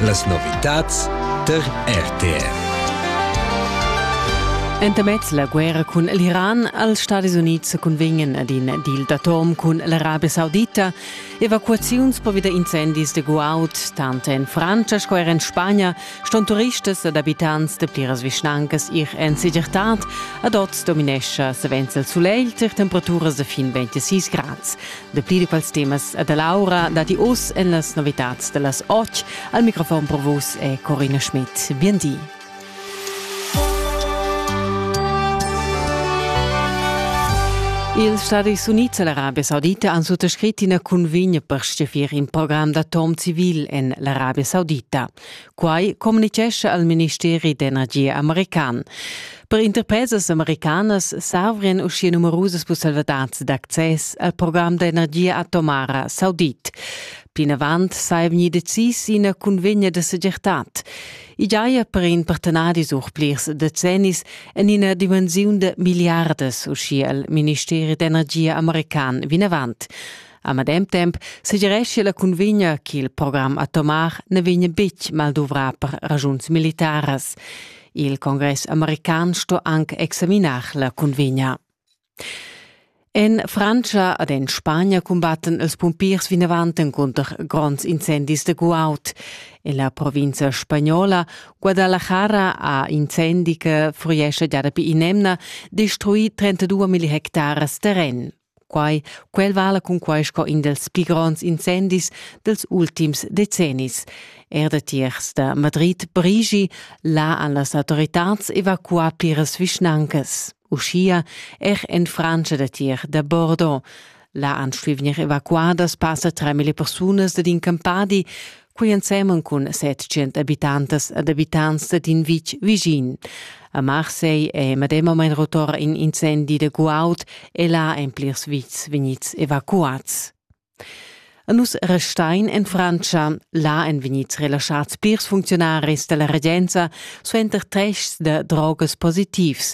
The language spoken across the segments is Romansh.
Las novitads tar RTR. Entamez la guerra cun l'Iran als Stadis Unids cunvegnan ad in deal d'atom cun l'Arabia Saudita evacuaziuns per wieder incendis de guaud, tant en Frantscha sco er en Spagna ston turistas ed abitants de pliras vischnancas ir en segirtad. Ad oz dominescha savens il sulegl tar temperaturas de fin 26 grads. De plidicals temas e dall'aura datti oz en las novitads da las 8 al microfon pro vos e Corina Schmidt. Bien di. Ils Stadis Units e l'Arabia Saudita han suttascrit ina cunvegna per steffir in program d'atom civil en l'Arabia Saudita. Quai communitgescha al ministeri d'energia american. Per interpresas americanas s'avrian uschia numerusas pusselvadads d'access al program d'energia atomara saudit. Plinavant saja vegnì decis ina cunvegna da segirtad. I giaja per in partenadi sur plirs decennis en ina dimensiun da milliardas, uschia il ministeri d'energia american vinavant. A medem temp segirescha la cunvegna che il program atomar ne vegna betg malduvrà per ragiuns militaras. Il congress american sto anche examinar la cunvegna. En Francia ed en Spagna cumbatten els pumpiers vinavant cunter gronds incendis de guaut. En la provincia spagnola Guadalajara ha incendi che fuiesce già dapi in'emna destruì 32 milli hectares terren. Quai, quel vala cunquai sco in dels pli gronds incendis dels ultims decennis. Er da tiers da Madrid brigi là an las autoritats evacuar piras vischnancas. Uschia er en Frantscha da tier da Bordeaux. La anschlivnir evacuadas passa 3.000 persunas ed in campadi, Quei ensemen cun 700 abitantas ed abitants dad in vitg vischin. A Marseille è medemamain rotor in incendi de guaud e là ein plirs vitgs vegnids evacuats. A nus restein en Frantscha, là ein vegnids relaschats plirs funzionaris della regenza suenter tests de drogas positivs.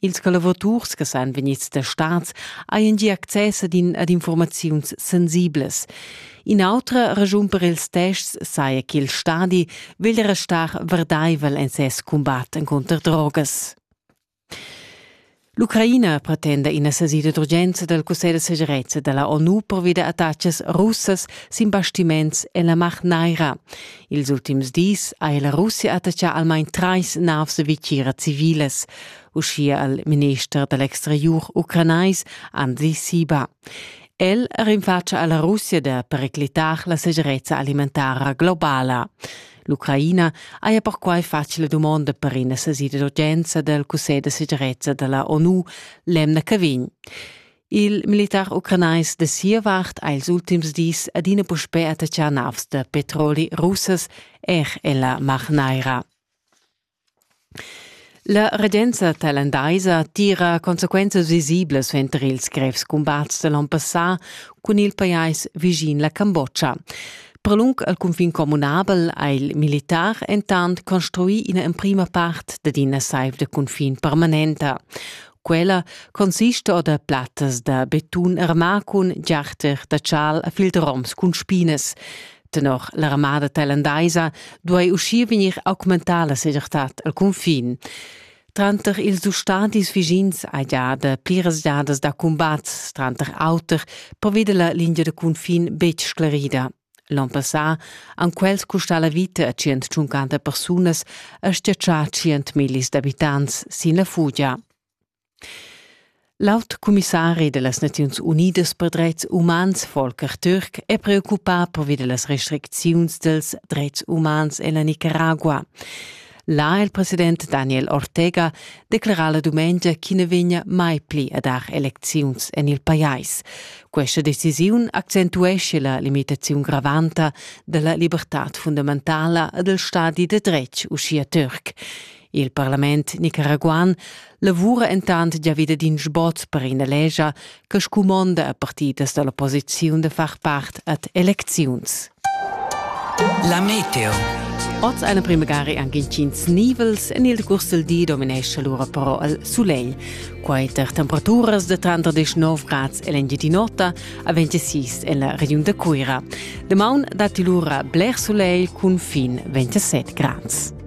Ils collavuraturs che san vegnids da stads hajan gia access ad, in, ad informaziuns sensiblas. In'autra raschun per ils tests saja ch'il stadi vegl restar verdaivel en ses cumbat encunter drogas. L'Ucraina pretenda ina sesida d'urgenza dal Cussegl da segirezza da la ONU pervi da attacas russas sin bastiments en la Mar Naira. Ils ultims dis ha la Russia attachà almain trais navs e vitgiras civilas, uschia al minister da l'exteriur ucranais Andriy Siba. El rinfatga a la Russia da periclitar la segirezza alimentara globala. L'Ucraina haja perquai fatg la dumonda per ina sesida d'urgenza dal Cussegl da segirezza da la ONU l'emna che vegn. Il militar ucranais da sia vart ha ils ultims dis adina puspè attaccà navs da petroli russas er en la Mar Naira. La regenza tailandaisa tira consequenzas visiblas suenter ils grevs cumbats da l'onn passà cun il pajais vischin la Cambodscha. Per lung al cunfin communabel ha il militar entant construì ina emprima part dad ina saiv da cunfin permanenta. Quella consista da plattas da betun armà cun giarter da chal a filteroms cun spinas. Tenor l'armada thailandaisa duai uschia vegnir augmentada la segirtad al cunfin. Tranter ils ustadis vischins hai già da pliras giadas da cumbats, tranter auter preveda la lingia da cunfin betg sclerida. L'on passà han quels custà la vita a 150 persunas e stiatschà 100 millis d'abitants sin la fugia. L'aut comissari de las Naziuns Unidas per drets umans Volker Türk è preoccupà pervi de las restricziuns dels drets umans en la Nicaragua. Là è il president Daniel Ortega declerà la dumengia ch'i na vegnia mai pli a dar elecziuns en il pajais. Questa decisiun accentuesce la limitaziun gravanta da la libertad fundamentala e dal stadi da dretg uschia turc. Il parlament nicaraguan lavura entant gia vida d'in sbot per ina lescha che scumonda a partidas da l'opposiziun da far part ad elecziuns. La meteo. Oz eine primagari anche incins nivels en il curs del di dominesce lura però il sulegl. Quai tar temperaturas da 39 grads l'Engiadin'Ota a 26 en la regiun de Cuira. Demaun datti lura bler sulegl cun fin 27 grads.